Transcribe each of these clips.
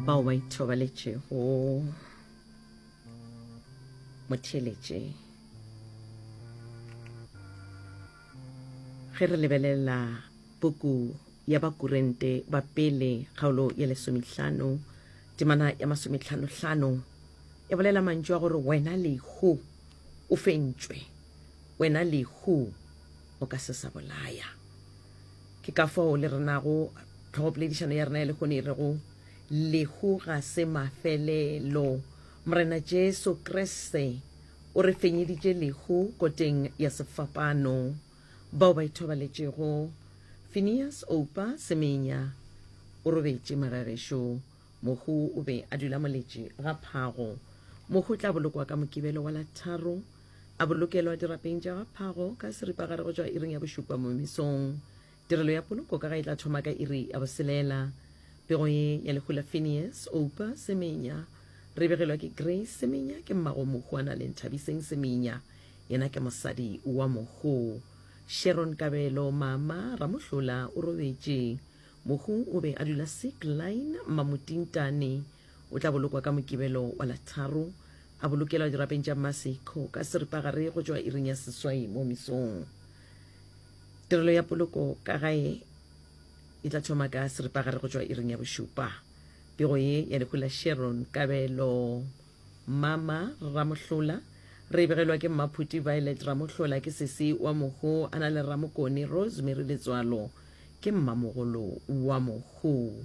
bao ba ithobaletšego motheletše ge re lebelela puku ya bakurente ba pele kgaolo ya lesomehlano temana ya masometlhanohlano e bolela mantšu a gore wena lehu o fentšwe wena lehu o ka se sa bolaya Ke ka fao le renago tlhogopoledišano ya rena ya lehono e rego, Lehu ga se mafelelo. Morena Jesu Kriste o re fenyeditše lehu koteng ya sefapano. Bao ba ithobaletšego, Phineas Oupa Semenya o robetše magagešo. Mohu o be a dula moletše ga phago. Mohu o tla bolokwa ka Mokibelo wa la tharo, a bolokelwa dirapeng tša ga phago ka seripagare go tšwa iring ya bošupa momesong. Tirelo ya poloko ka ga e tla thoma ka iri ya boselela. Pego ye ya lehu la Phineas Oupa Semenya re begelwa ke Grace Semenya, ke mmago mohu a na le Nthabiseng Semenya, yena ke mosadi wa mohu. Sharon Kabelo, mama, Ramohlola o robetše. Mohu o be a dula sick line Mamutintane. O tla bolokwa ka Mokibelo wa la tharo, a bolokelwa dirapeng tša Masiko ka seripagare go tšwa iring ya seswai mo mesong. Tirelo ya poloko ka gae e tla thoma ka seripagare go tšwa iring ya bošupa. Pego ye ya lehu la Sharon Kabelo. Mama Ramohlola, Re e begelwa ke Mmaphuti Violet Ramohlola, ke sesi wa Mohu, a na le Ramokone Rosemary Letswalo, ke mmamogolo wa Mohu.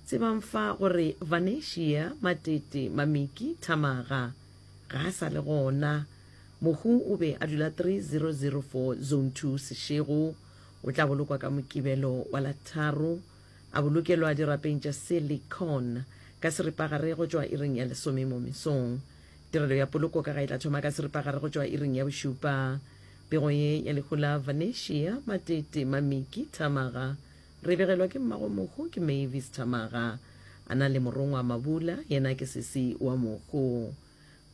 Tsebang fa gore Vanesia, Matete, Mamiki, Thamaga, ga a sa le gona. Mohu o be a dula 3004 Zone Two Seshego. O tla bolokwa ka Mokibelo wa la tharo. a bolokelwa dirapeng tša silicone ka seripagare go tšwa iring ya lesome mo mesong. Tirelo ya poloko ka ga e tla thoma ka seripagare go tšwa iring ya bošupa. Pego ye ya lehu la Vanesia, Matete, Mamiki, Thamaga, re e begelwa ke mmagwe mohu ke Mavis Thamaga. A na le morongwa Mabula, yena ke sesi wa mohu.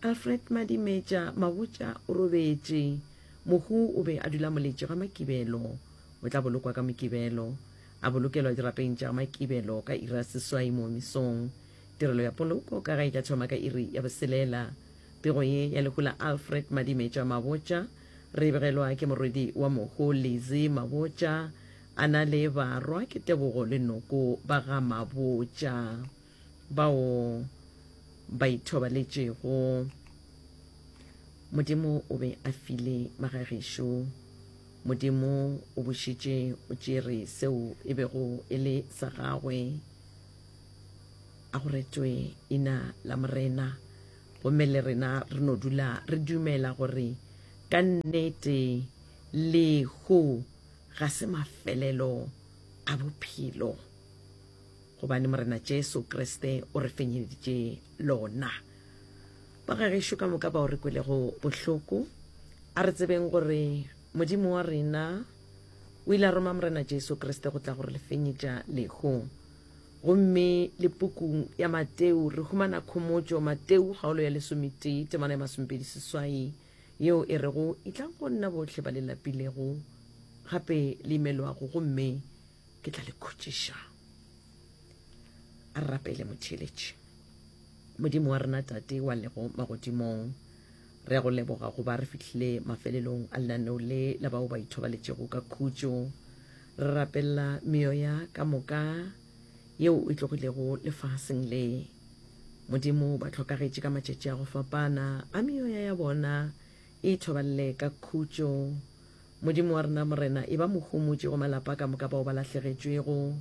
Alfred Madimetša Mabotša o robetše. Mohu o be a dula moletše ga Makibelo. O tla bolokwa ka Mokibelo. A bolokelwa dirapeng tša ga Makibelo ka iri ya seswai moo mesong. Tirelo ya poloko ka ga e tla thoma ka iri ya boselela. Pego ye ya lehu la Alfred Madimetša Mabotša re e begelwa ke morwedi wa mohu Lizzy Mabotša a na le barwa ke Tebogo le Noko ba ga Mabotša. bao ba ithobaletšego. Modimo o be a file magagešo. Modimo o bošetše o tšere seo e bego e le sa gagwe. A go retšwe ina la Morena. Gomme le rena re no dula re dumela gore ka nnete lehu ga se mafelelo a bophelo. gobane Morena Jesu Kriste o re fenyeditše lona. Ba ga gešo ka moka bao re kwelego bohloko, a re tsebeng gore Modimo wa rena o ile a roma Morena Jesu Kriste go tla go re le fenyetša lehu. Gomme le pukung ya Mateu re humana khomotšo, Mateu kgaolo ya lesometee temana ya masomepedi seswai, yeo e rego, Itlang go nna bohle ba le lapilego gape le imelwago, gomme Ke tla le khutšiša. A re rapele motheeletši. Modimo wa rena Tate wa lego magodimong, re a go leboga go ba re fihlile mafelelong a lenaneo le la bao ba ithobaletšego ka khutšo. Re rapella meoya ka moka yeo e tlogilego lefaseng le. Modimo ba tlhokagetše ka matšatši a go fapana a meoya ya bona e ithoballe ka khutšo. Modimo wa rena, Morena, eba mohumotši go malapa ka moka bao ba lahlegetšwego.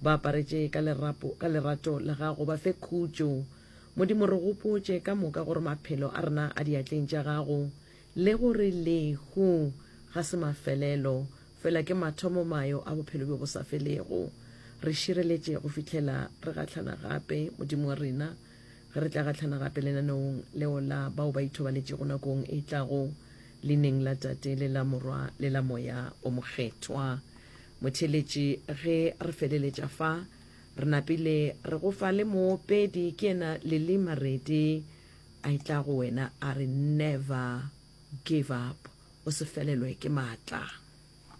Ba aparetše ka lerapo, ka lerato la Gago. Ba fe khutšo. Modimo, re gopotše ka moka gore maphelo a rena a diatleng tša Gago, le gore lehu ga se mafelelo, fela ke mathomo mayo a bophelo bjo bo sa felego. Re šireletše go fihlela re gahlana gape, Modimo wa rena. Re tla gahlana gape lenaneong leo la bao ba ithobaletšego nakong e tlago, leineng la Tate le la Morwa le la Moya o Mokgethwa. Motheeletši, ge re feleletša fa, re napile re go fa le moopedi, ke yena Lily Maredi, a etla go wena a re, Never give up, o se felelwe ke matla.